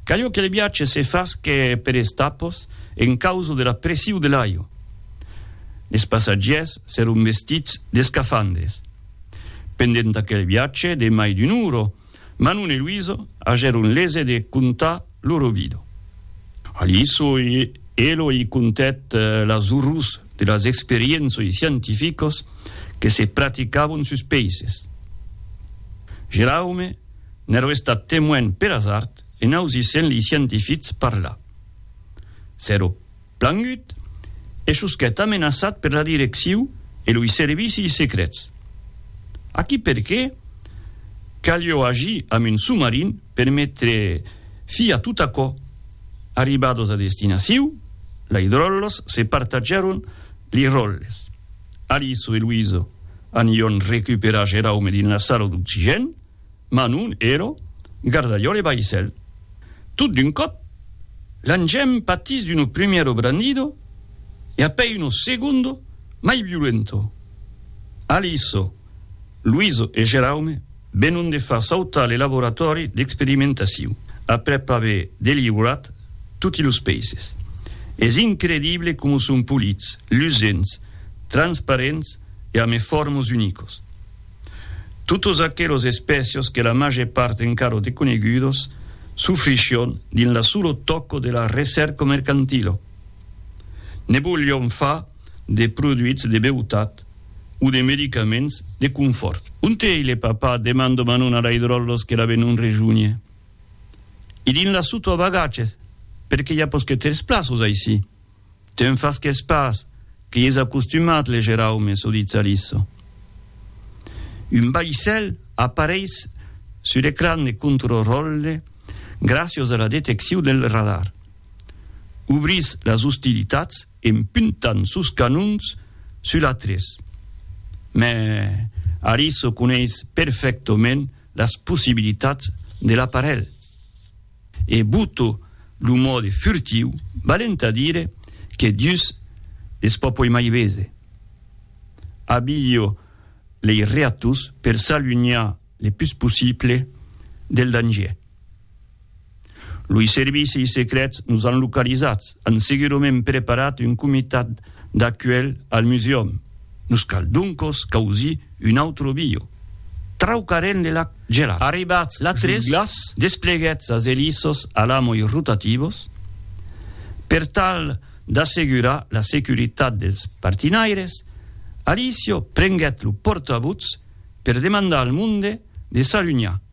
Calho que le viatge se fasque per estapos en causa de la pressiu de l'aio. Les passatgièrs s'èron vestits d'escafandres. Pendent aquel viatge de mai d'un uro, Manon e Luiso agèron lese de contar loro vida. A Luiso, Elo i contèt las orrors de las experiénçoi scientificos que se practicavon sus peisses. Geraume, n'èro estat temoin per asard en ausissent lei scientifics parlar. S'èro plangut e sosquèt amenaçat per la direcciu e loi servicis secrets. Aquí perqué calió agir amb un somarin per metre fi a tot aquò. Arribados a destinaciu, lei dròllos se partatgèron lei ròlles. Aliso e Luiso Anion recuperar Geraume dina sala d'oxigèn, Manon, Ero, Gardalhòl e Baissèl. Tot d'un còp, l'engèn patís d'uno primièro brandido e apèi uno segundo mai violento. Aliso, Luiso e Geraume Venon de far sautar le laboratòri d'experimentacion aprèp aver delivrat toti los peisses. Es incredible coma son polits, lusents, transparents e a me fòrmos unicos. Totos aquelos espècios que la màger part encara deconegudos sufrichion dins la solo tòco de la recèrca mercantila. Ne volion far de produits de beutat. o de medicaments de confòrt. Onte ei le papà? demando Manon a Laidròllos que la ven un rejunhe. I dins la soto a bagatges, perque i a posquetèrs plaços aicí. Te'n fasques pas, que i es acostumat, le Geraume, çò ditz Alisso. Un baissèl apareis sul ecran de controròlle gràcios a la detecciu del radar. Obrís las ostilitats en puntant sos canons sul atrés. Mai Ariso coneis perfèctament las possibilitats de l'aparelh e Buto lo mòde furtiu balent a dire que dus es pas puèi mai bese. Abilho lei reatus per s'alunhar le pus possible del dangièr. Loi servicis secrets nos an localizats, an segurament preparat un comitat d'acuelh al museum. Nos cal doncos causir un autre bio. Traucarem le lac gelat. Arribats sus glaç, despleguètz as elissos alamoi rotativos per tal d'assegurar la securitat dels partinaires. Alicio prenguèt lo pòrta-votz per demandar al monde de s'alunhar.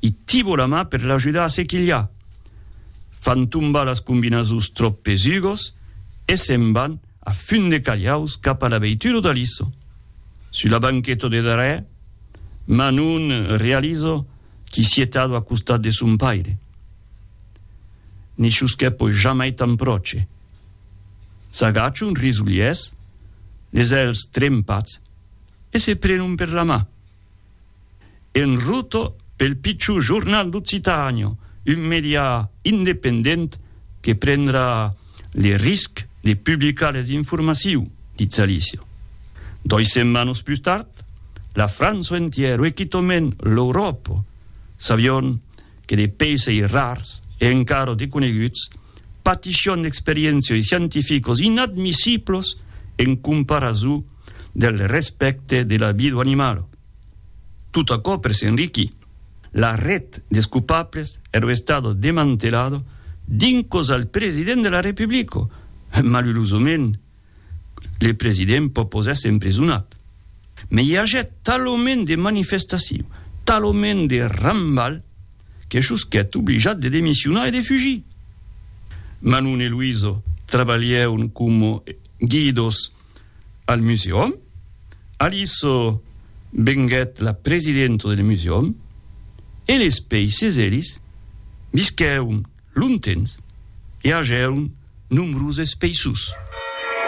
i tibo la mà per l'ajudar a se quilhar. Fan tombar las combinasons tròp pesugos e se'n van a fun de calhaus cap a la veitura d'Aliso. Sus la banqueta de darrèr, Manon realizo qu'i sié tado a costat de son paire. Ne chusquè poi jamai tan pròche. S'agachon risolhers, les èlhs trempats, e se prenon per la mà. En ruta pel pichor jornal d'Occitània, un medià independent que prendrà le risc de publicar les informaciu, ditz Alícia. Dois setmanas pus tard, la França entièr ue quitament l'Euròpa, sabion que de peissei rars e encara deconeguts patishion d'experiéncioi scientificas inadmissiblas en comparazou del respècte de la vida animala. Tot aquò per s'enriquir. La ret des copables ero estado demantelado dincos al president de la Republico. Malurosament, le president pò pos èsser emprisonat. Me i agèt talament de manifestacion, talament de rambal, que sosquèt oblijat de demissionar e de fugir. Manon e Luiso trabalhèron coma guidos. al musèum, Aliso venguèt la presidenta del musèum e les pèisses elis visquèron longtemps e agèron nombroses pèissos.